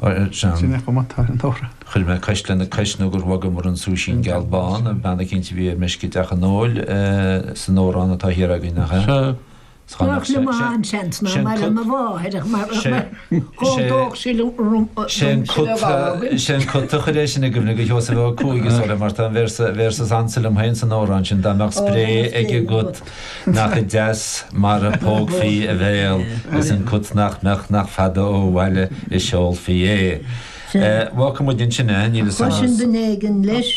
Ba é John. Chuir mé cois lena cois nó gur bhogamar an súisín geal bán, bean eicínt a bhí ar meisce i dteach an óil, san amhrán atá thiar againn, nach ea? Sea. Bheadh liom an-seans ná mar a mba mháthair ach mar chodlódh sí liom go raibh sé an codladh. Sé an cat a chuir é sin i gcuimhne do Sheosamh Ó Cuaig is dóigh mar tá an véarsa is ansa liom féin san amhrán sin, dá mbeadh spré ag an gcat. Nach deas mar a pógfaí a bhéal is an cat nach mbeadh nach fada ó bhaile a seolfaí é. Bhuel, fágfaidh muid ansin é, níl 'fhios a'm. Cloisim duine éigin leis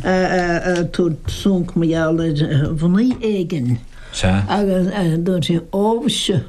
ag tabhairt sonc mar gheall ar mhnaoi éigin agus dúirt sé, Ó mhuise!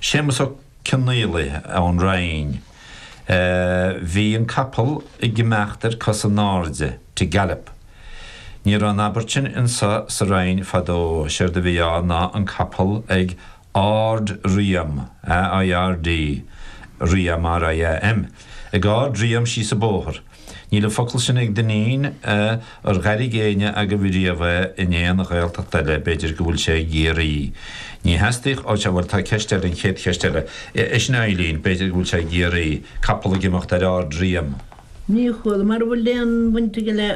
Séamus Ó Cionnfhaolaidh ón Rinn. Bhí an capall ag imeacht ar cos in airde, to gallop. Ní raibh an abairt sin anso sa Rinn fadó, séard a bhí ann ná an capall ag árd-riam, AIRD, riam, RIAM, ag árd-riam síos an bóthar. Níl an focal sin ag Dinneen, ar dh'airigh éinne agaibh riamh é in aon Ghaeltacht eile, b'fhéidir go bhfuil sé i gCiarraí? Ní theastaíodh, ó, sea, bhuel, tá ceist eile, an chéad cheist eile, é sin Eileen, b'fhéidir go bhfuil sé i gCiarraí, capall ag imeacht ar ardriam. Ní chuala, mara bhfuil aon bhaint aige le,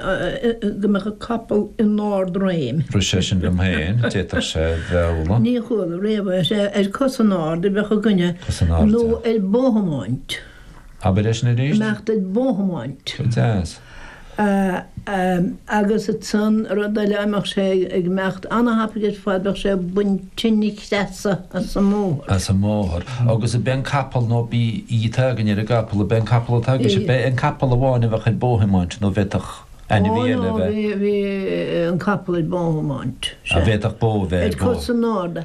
go mbeadh an capall in ardréim. Rith sé sin liom féin, d'fhéadfadh sé bheith, ola. Ní chuala riamh é, sea, ar cosa in airde a bheadh againne, nó ar bóthiomáint. Abair é sin arís. mbeadh duit bóthiomáint. Go deas. agus ansan rud eile dá mbeadh sé ag imeacht an-thapaidh ar fad bheadh sé ag baint tinn na creasa as an mbóthar. as an mbóthar agus ab é an capall nó ab í atá againn ar an gcapall ab é an capall atá aige sé ab é an capall amháin a bheadh ar bóthiomáint nó bhféadfadh ainmhí eile a bheith. Ó no bhí an capall ag bóthiomáint. Sé. Bhféadfadh bó a bheith ag bó. Ag cur san ord.